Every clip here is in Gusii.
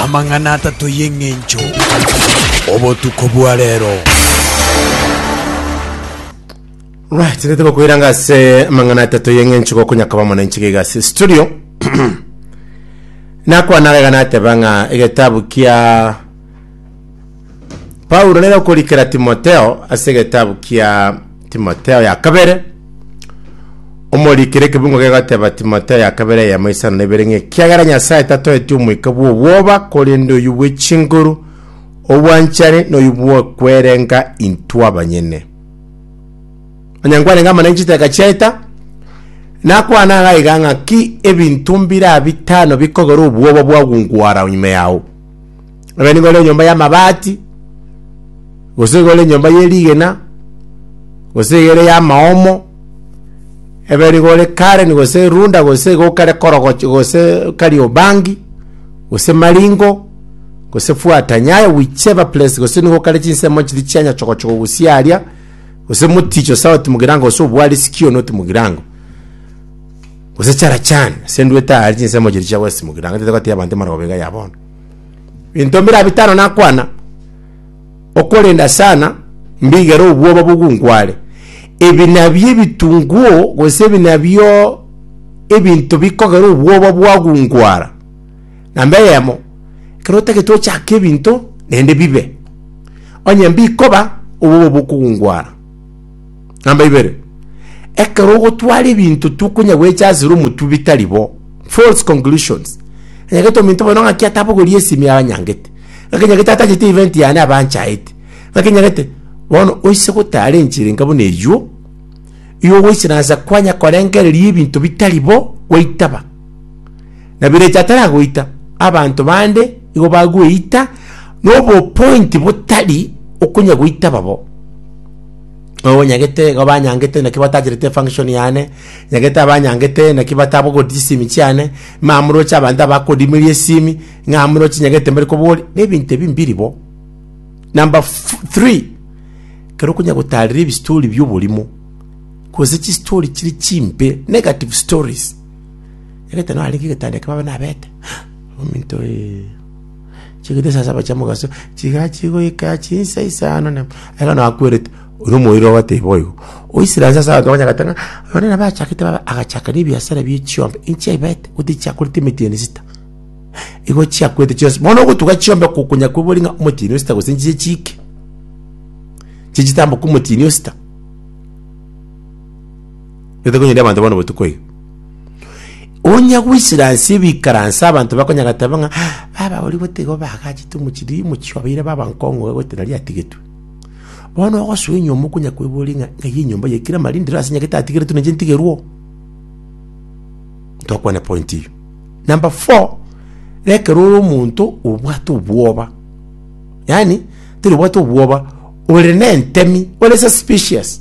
Amang'ana atato y'engencho obotuko bwa rero. Right, tete bakoiranga ase amang'ana atato y'eng'encho gokonyakaba omonenche gaiga ase studio nakwana gaiga nateba ng'a egetabu kia Paulo nere okorikera Timotheo ase egetabu kia Timotheo ya kabere, omorikere ekebungo gegoteba Timotheo ya kabere eyemo isano na ibere ng'a ekiagera Nyasae tatoeti omoika bw'obwoba, korende oyio bw'echinguru, obwanchani, na oyio bw'okwerenga intwe abanyene. Onye nkwanenga amana y'echiteka chiaita, nakwana iga iga ng'aki ebinto mbira bitano bikogera obwoba bwagungwara ime yao. Ebe nigo ore enyomba y'amabati, gose iga ore enyomba ye rigena, gose iga ere y'amaomo, ebe nigo ore Karen gose Runda gose iga okare Korogocho gose Kariobangi, gose Maringo, gose Fuata Nyayo, whichever place, gose nigo okare chinsemo chiria chia Nyachogochogo gosia aria, gose Moticho South Mugirango gose Obwari Sikio North Mugirango, gose Charachan, ase ndwete aria chinsemo chiria chia West Mugirango, ntatagoteebia abanto emarobega ya bono. Binto mbira bitano nakwana, okorenda sana mbigere obwoba bogungware. Ebi nabio ebitunguo gose ebi nabio ebinto bikogera obwoba bwagungwara. Namba eyemo, ekero otagete ochake ebinto naende bibe, onye mbikoba obwoba bokogungwara. Namba ibere, ekero ogotwara ebinto tokonya gwecha asere omotuo bitari bo, false conclusions. Anyagete ominto bono ng'aki atabogoria esimi aranyangete. Ng'aki nyagete atachete event yane abanchaete. Ng'aki nyagete bono oise gotara enchera enka buna eywo, igo goise nansa kwanya korengereria ebinto bitari bo gwaitaba. Na birecha ataragoita, abanto bande igo bagweita nobo point botari okonya goitaba bo. Oo nyagete igo banyangete naki batacharete function yane, nyagete abanyangete naki batabogoria chisimi chiane, mama moroche abanto abakodimeria esimi, ng'a moroche nyagete mbare koboria, na ebinto ebi mbiri bo. Number fu- three, ekero okonya gotarera ebistori bia oborimo, gose chistori chiri chimbe, negative stories, nyagete narenge egetanda ekio babe nabete, ominto ee. chigita saa saba chia mogaso, chigaa chigoika chinsa isano na ekero nakwerete, oria omoiri ogateba boigo, oisire ansa ase abanto bakonye goteba ng'a oyo nere bachakete baba agachaka na ebiasara bie chiombe, inche aibete gose tichiakorete emetieno esita, igo chiakorete chionsi, bono ogotuga chiombe oko okonya koigwera ng'a omotienyi osita gose nchiche chiike, chichitamboka omotienyi osita. Gete konyeria abanto bono botuko iga. Onya goisera ase ebikaransa abanto bakonya gateba ng'a baba oria botiga obagachete omochiri omochie obeire baba nkong'u iga goetera ria atigetwe. Bono ogosoa enyomba okonya koiboria ng'a ng'ai enyomba ye kire marinde ero ase nyagete atigeretwe nenche ntigerwe oo. Ntokwane point eyio. Number four, ekero ore omonto obwate obwoba, yaani teri obwate obwoba. ore nentemi ore suspicious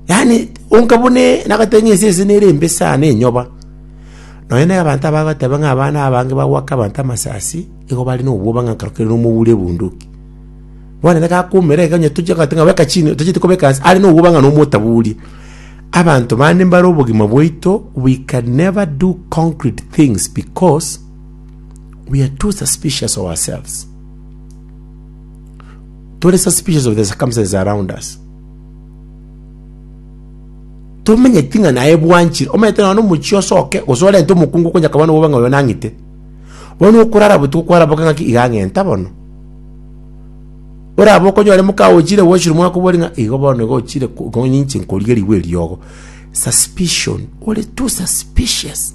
yani onka bune nagatenya ese ese nere embe sana enyoba nonya na abanto abagoteba ng'a abana abange bagwaka abanto amasasi igo bare na obwoba ng'a nkarokire na omobura ebunduki bono ere gakoumera iga onye tochia goteba ng'a beka chini tocheti kobeka ase are na obwoba ng'a nomotaburia abanto bande mbare obogima bwaito we can never do concrete things because we are too suspicious of ourselves. tore suspicious of the circumstances around us tomenyeti ng'a naye bwanchire omanyete nonya na omochi osoke gose orente omokungu okonye akabana obobe ng'a oyo nang'ite bono okorara botuko kwaraboke ng'aki iga ang'enta bono orabe okonyore moka ochire gochire mwakobori ng'a igo bono igo ochire ko- ko ninche nkorigerigwe eriogo suspicion ore too suspicious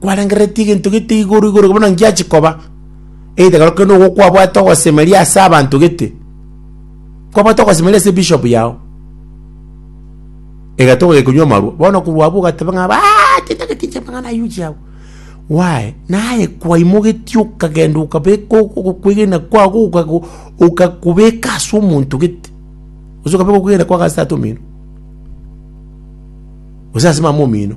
Kwarangereretie egento gete igoro igoro buna ngiache koba, egetegero kende nigo kwabwate ogosemeria ase abanto gete, kwabwate ogosemeria ase ebishop yago, egatoga gekonywa amarwa, bono korwa abwo ogateba ng'a abaaaaa tintagete inche amang'ana aywo inche abwo, why? Naye kwaimogetie okagenda okabeka ogo ogokwegena kwago okago okakobeka ase omonto gete, gose okabeka okwegena kwago ase tata omino, gose ase mama omino.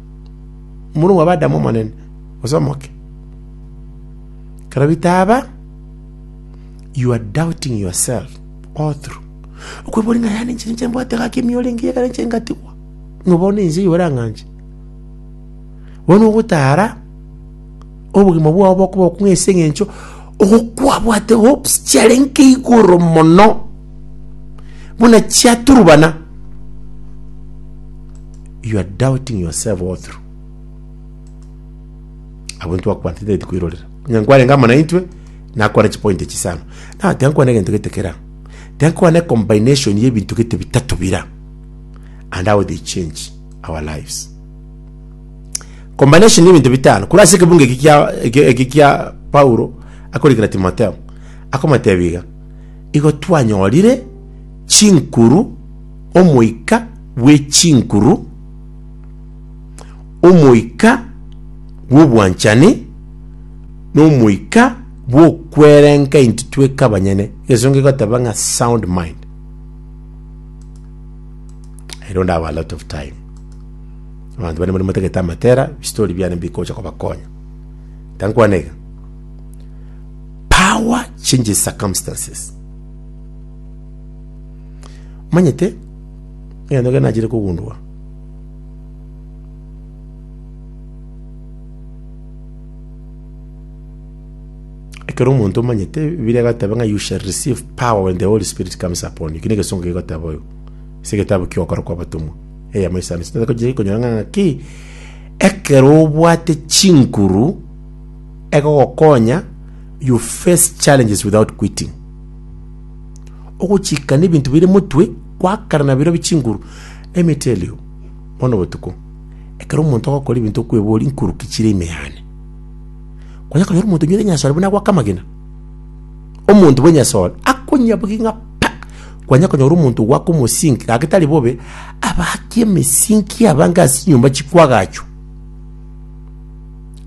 Omorunwa oba Adamu omonene, gose omoke. Ekero bitaaba, you are doubting yourself all through. Okweboria ng'a yaani inche ninche mbwate gaki ime orenge ekero inche ngatigwa, ng'a bono inche oyio orang'anche. Bono ogotara, obogima bwao bokoba okong'u ase eng'encho ogo kwabwate hopes chiarenge igoro mono, buna chiaturubana. You are doubting yourself all through. Abo ntwakwantetete tikwirorera. Onye nkwane ngama na intwe, nakwane chipoint echi sana. Na tiga nkwane egento gete kera. Tiga nkwane combination ya ebinto gete bitato bira. And how they change our lives. Combination ya ebinto bitano. Kura ase ekebungo eki kia eki eki kia Paulo akorikera Timotheo. Akomotebiga igo twanyorire chinkuru Omoika bwe chinkuru, omoika bw'obwanchani, na omoika bw'okwerenka inti tweka abanyene, egesongo egoteba ng'a sound mind. I don't have a lot of time. Abanto bare mbare motagete amatera, ebistori biane mbikocha kobakonya. Tankwana iga. Power changes circumstances. Omanyete egento keke nachire kogundua? Ekero omonto omanyete, Ebibilia egoteba ng'a you shall receive power when the Holy Spirit comes upon you. Eki negesongo kegoteba oyo. Ase egetabu kia Ogokora kw'Abatomwa. Eyemo isano isano. Tari gochia konyora ng'a ng'aki, ekero obwate chinguru egogokonya you face challenges without quitting. Ogochika nebinto bire motwe kwa kare nabirobie chinguru. Let me tell you, bono botuko, ekero omonto agokora ebinto okweboria nkuruki chire ime yane. Kwanya konyora omonto onyorire nyasore buna agoaka amagena. Omonto bwe nyasore, akonyabogie ng'a pa! Kwanya konyora omonto ogoaka omosinki, gaki tari bobe, abakie emesinki abange ase enyomba chikoagachwa.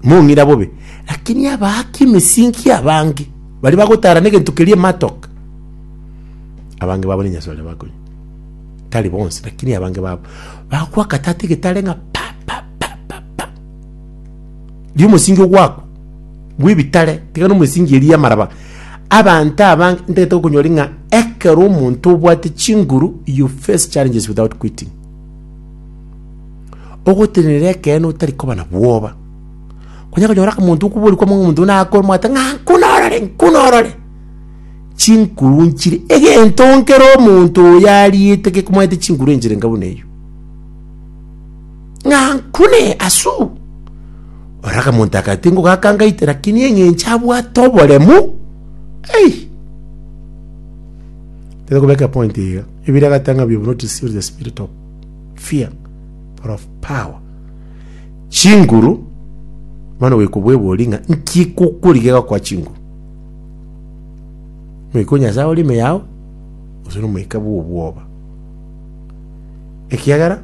Mong'ina bobe, lakini abaaki emesinki abange. Baria bagotaara negento keria ematoka, abange babo ninyasae oria bakonywa. Tari bonsi, lakini abange babo bagokwa akatata egetare ng'a pa pa pa pa pa. Riria omosingi ogwakwa bw'ebitare, tiga na omosingi eria y'amaraba, abanto abange ntagete gokonyora ng'a ekero omonto obwate chinguru you face challenges without quitting. Ogotenenera ekeene otari koba na bwoba. Kwanya konyora omonto okobori kwamo ng'a omonto nakore omwate ng'a nkunorore nkunorore, chinkuru nchire egento nkere omonto oyo ariete gekomanyete chinkuru enchire enka buna eywo. Ng'a nkune aswe oo, ororo akamonto aka tingogaka ngaite lakini eng'encho abwate oboremu hey! Tari kobeka epoint iga, ebira agateba ng'a we have not received the spirit of fear but of power. Chinguru, bono goikobwebori ng'a nki ekokorigia gokoa chinguru? Moika o Nyasae ore ime yao, gose nomoika bw'obwoba? Ekiagera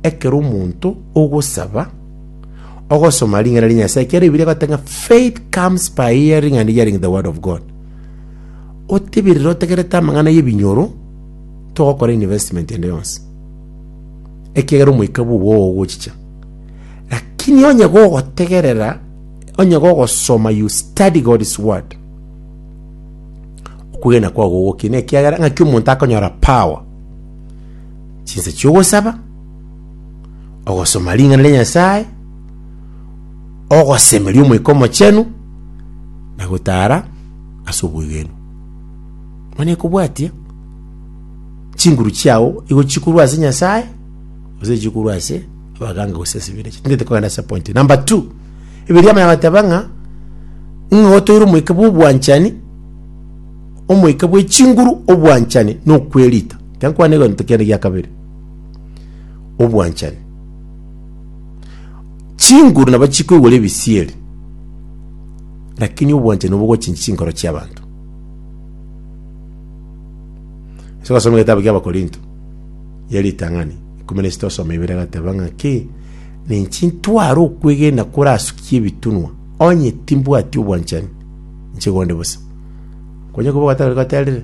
ekero omonto ogosaba, ogosoma ring'ana ria Nyasae, ekiagera Bibilia egoteba ng'a faith comes by hearing and hearing the word of God. Otebirire otegerete amang'ana y'ebinyoro, togokora investment ende yonsi. ekiagera omoika bw'obo ogochicha. Lakini onye gogotegerera, onye gogosoma, you study God's word, okwegena kwao gogokie, na ekiagera ng'aki omonto akonyora power chinsa chi'ogosaba, ogosoma ring'ana ria Nyasae, ogosemeria omoika omochenu, na gotara ase obwegenwa. Mani ekobwatia. chinguru chiao igo chikorwa ase Nyasae gose chikorwa ase abaganga gose ase ebirecha ting'ete kogenda ase point number two ebiria abana bateba ng'a ng'a otoire omoika bwa obwanchani omoika bwe chinguru obwanchani na okwerita tinkwana egento kende gia kabere obwanchani chinguru nabo chikoigwa na ebisieri lakini obwanchani nigo bogochinchia chinkoro chiabanto. Ase ogosoma egetabu ki'Abakorinto ya ritang'ani ikomi na isito osoma ibere agateba ng'a ki ninchi ntware okwegena korasukie ebitunwa, onye timbwati obwanchani inche gonde bosa. Konya koba gatari gaterire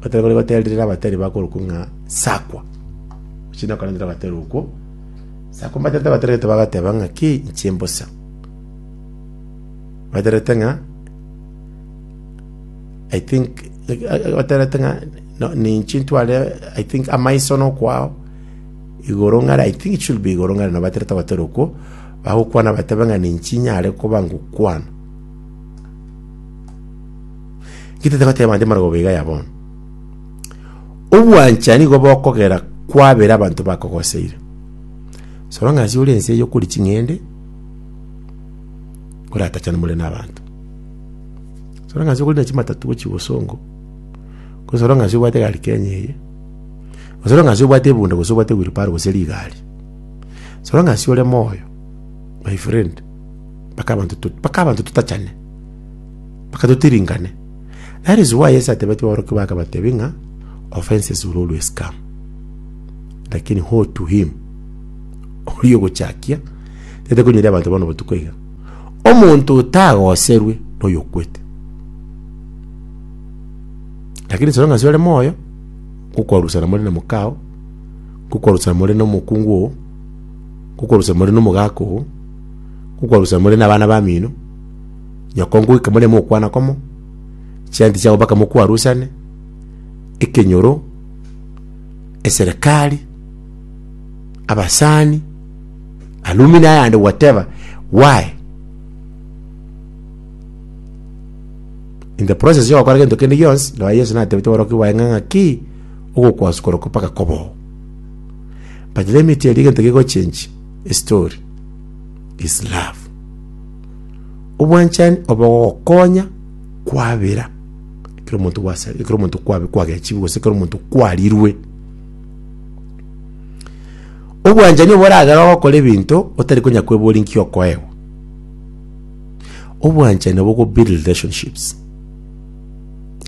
gatari gori gaterire abatari bakorokwa ng'a sakwa chinde akarendera agatari okwo sakwa mbaterete abatari gete bagateba ng'a ki inche mbosa baterete ng'a I think oterete ng'a no, ninchi ntware I think amaiso nokwao igoro ng'are I think it should be igoro ng'are nobaterete gotera okwo bagokwana batebe ng'a ninchi nyare koba ngokwana gitete goteba nde marogoba iga ya bono obwancha nigo bokogera kwabera abanto bakogoseire so long as ore ense eye okori ching'ende oratachane more na abanto Soro ng'asi okorina chimatatu gochia bosongo, gose soro ng'asi obwate egari Kenya eye, gose soro ng'asi obwate ebunda gose obwate wheelbarrow gose rigari. Soro ng'asi ore moyo, my friend, mpaka abanto to- mpaka abanto totachane, mpaka totiringane. That is why Yeso atebeti abaroki baye akabatebi ng'a offences will always come, lakini hold to him oria ogochakia, tete konyora abanto bono botuko iga. Omonto otagoserwe noyokwete. Lakini soro ng'asi ore moyo, ngokwarusana more na mokao, ngokwarusana more na omokungu oo, ngokwarusana more na omogaka oo, ngokwarusana more na abana bamino, nyoko ngoika more mokwana komo, chianti chiabo mpaka mokwarusane, ekenyoro, eserekari, abasani. Alumi nayande gwateba why in the process yo gokora gento kende gionsi ndoa Yesu natebete boroki baye ng'a ng'aki ogokwasu korokwa mpaka koboo but let me tell you gento gigochenchi story is love obwanchani obogokonya kwabera ekero omonto gwasa ekero omonto kwabe kwagechiwu gose ekero omonto kwarirwe Obwanchani obo oragere ogokora ebinto otari konya kweboria nki okoegwa. Obwanchani obo go build relationships.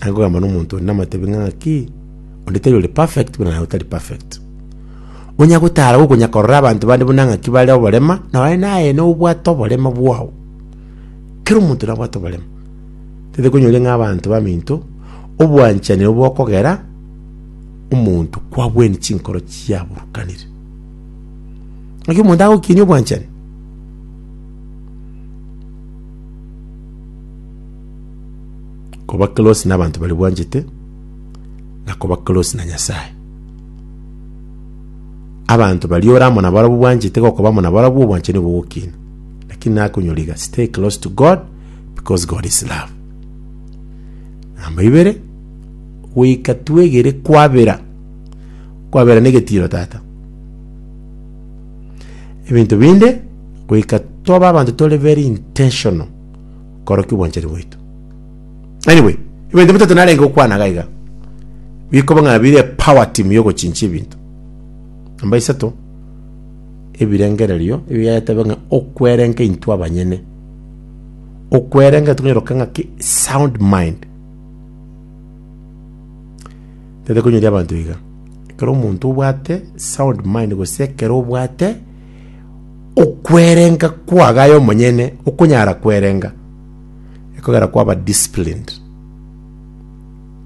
Agogamba n'omonto onde namatebi ng'a ng'aki, onde tari ore perfect buna naye otari perfect. Onya gotara gokonya korora abanto bande buna ng'aki bare oborema, nonye naye na obwate oborema bwao. Kera omonto nabwate oborema. Tete konyore ng'a abanto baminto, obwanchani obo okogera, omonto kwagwenie chinkoro chiaburukanire. Naki omonto agokinia obwanchani koba close na abanto bari bwanchete na koba close na Nyasaye. Abanto bari ore amo nabarabwo bwanchete gokoba amo nabarabwo obwanchani obo ogokiina. Lakini nakonyora iga stay close to God because God is love. Namba ibere goika twegere kwabera, kwabera negetiiro tata. Ebinto binde goika tobe abanto tore very intentional korokia obwanchani bwaito. Anyway, ebinto bitato narenge gokwana iga iga, bikoba ng'a bire power team ya ogochinchia ebinto. Namba isato, ebirengererio ebi Yaya ateba ng'a okwerenga intwe abanyene, okwerenga tokonyora gokora ng'aki sound mind. Tari konyoria abanto iga. Ekero omonto obwate sound mind gose ekero obwate okwerenga kwagaye omonyene okonyara kwerenga ekogera kwaba disciplined,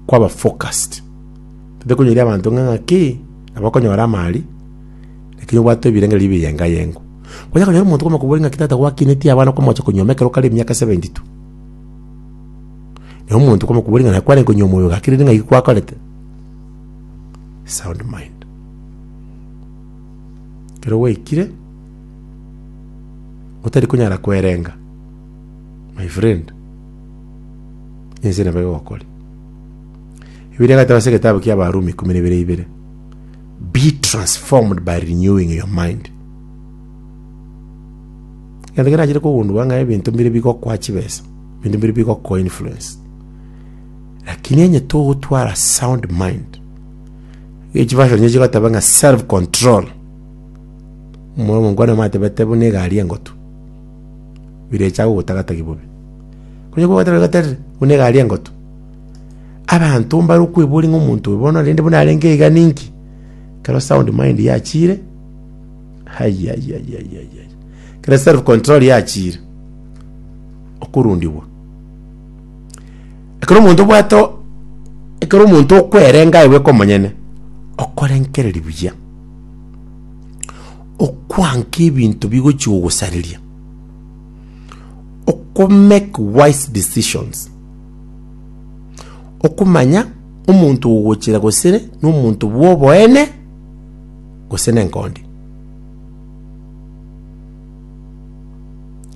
kwaba focused. Tari konyoria abanto ng'a ng'aki nabo okonyora amari lakini obwate ebirenge biri ebiyenga yengo. Onya konyora omonto kwamokobori ng'aki tata gwakineti abana kwamocha konyuoma ekero kare emiaka seventy two. Na omonto komokuboria ng'a nakwarenge konywa omoyo oyo gaki riri ng'ai gikwakorete? Sound mind. Kero gwaikire, otari konyara kwerenga, my friend, ense nabo egokori. Ebiria egata ase egetabu kia Abarumi ikomi na ibere ibere. Be transformed by renewing your mind. Egento kerachire kogundua ng'a ebinto mbire bigokwa chibesa. Binto biria bigoku influence. Lakini onye togotwara sound mind, echi version echi chigoteba ng'a self control. Omoro omongwana matebete buna egari engotu. Birecha gogotagatagi bobe. Kunya kwegoteba goterire buna egari engotu. Abanto mbare okwebori ng'a omonto oyo bono rende buna arenge iga ninki. Kero sound mind yachire, ayayayayayaya. Kero self control yachire. okorundigwa. Ekero omonto obwate o- ekero omonto okwerenga aye bweka omonyene, okorenkereria buya, okwanka ebinto bigochia gogosareria, okomake wise decisions, okomanya omonto ogochira gosere na omonto bwa oboene gose na engondi.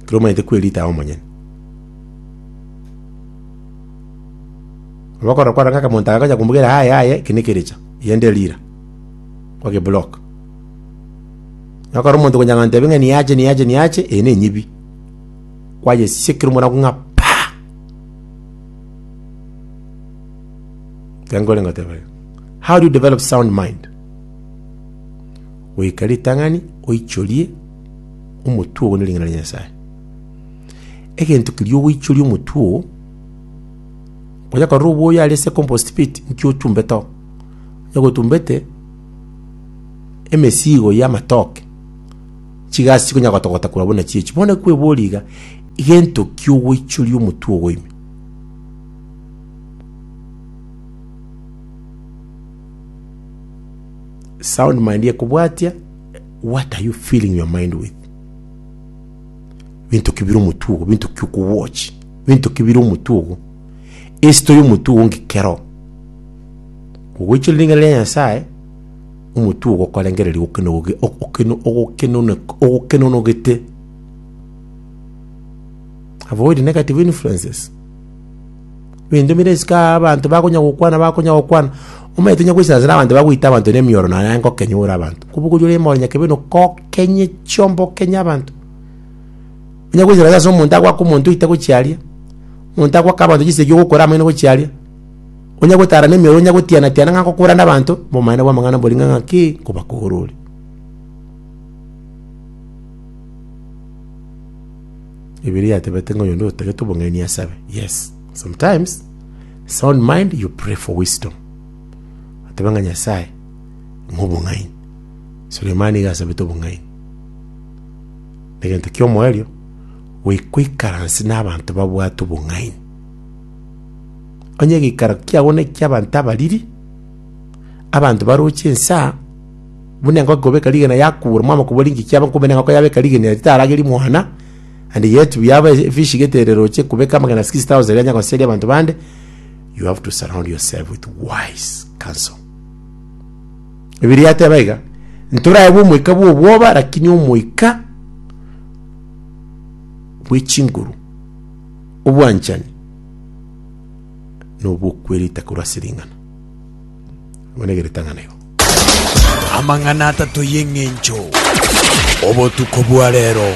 Ekero omanyete kwerita aye omonyene. Nabo okora kwarenge akamonto aka agocha komobwera aye aye eki nekerecha, eyende rira. Kwage block. Nabo ekero omonto okonya kogoteba ng'a niyache niyache niyache, eye nenyibi. Kwayesiekire omora ng'a paa! Ekero korengoteba iga. How do you develop sound mind? Goika ritang'ani oichorie omotwe oo ne ring'ana ria Nyasae. Egento keria ogoichoria omotwe oo, onya korora oboyo are ase compost pit, inki otumbete oo? Onye gotumbete emesigo y'amatoke, chigasi chikonya gotogota korwa buna chichi. Bono ekwebori iga, egento ki ogoichoria omotwe ogo ime? Sound mind ekobwatia what are you filling your mind with? Binto ki bire omotwe ogo? Binto ki okowatch? Binto ki bire omotwe ogo? Esito y'omotwe ogo ng'iki kero ogoichorera ring'ana ria Nyasae omotwe ogo okorengereria okenoge- okeno- ogokenone- ogokenonogete avoid negative influences Ebinto bire isiko aa abanto bakonya gokwana, bakonya gokwana. Omanyete onya goisasera abanto bagoita abanto nemioro naye aye ngokenya ore abanto. Kobogoria ore more nyakebe no kokenye chiomba okenye abanto. Onya goisasera ase omonto agoaka omonto oite gochia aria, omonto agoaka abanto chisegi ogokora amaino gochia aria, onya gotara nemioro onya gotiana tiana ng'a nkokora na abanto, obomaene bwa amang'ana mbori ng'a ng'aki, nkobakora ore. Bibilia yatebete ng'a oyonde otagete obong'aini asabe. Yes. Sometimes, sound mind, you pray for wisdom. Atebe ng'a Nyasae, ng'a obong'aini. Sulemani iga asabete obong'aini. Negento ki'omoerio, goikaransi n'abanto babwate obong'aini. Onye egeikaro kiago neki'abanto abariri, abanto baroche ensa, Buna engoko ekobeka rigena yakura, mwamoko bwa ringiki aba nkobe na engoko yabeka rigena ere tarageri mwana, and yet we have a fish getere roche kubeka amagena 6000 yanya goseria abantu bande, you have to surround yourself with wise counsel. Bibilia yateba iga, ntoraebwe omoika bw'obwoba, lakini omoika bw'echinguru, obwanchani, na obw'okwerita korwa ase ring'ana. Abone ege ritang'ani igo. Amang'ana atato y'eng'encho. Obotuko bwa rero.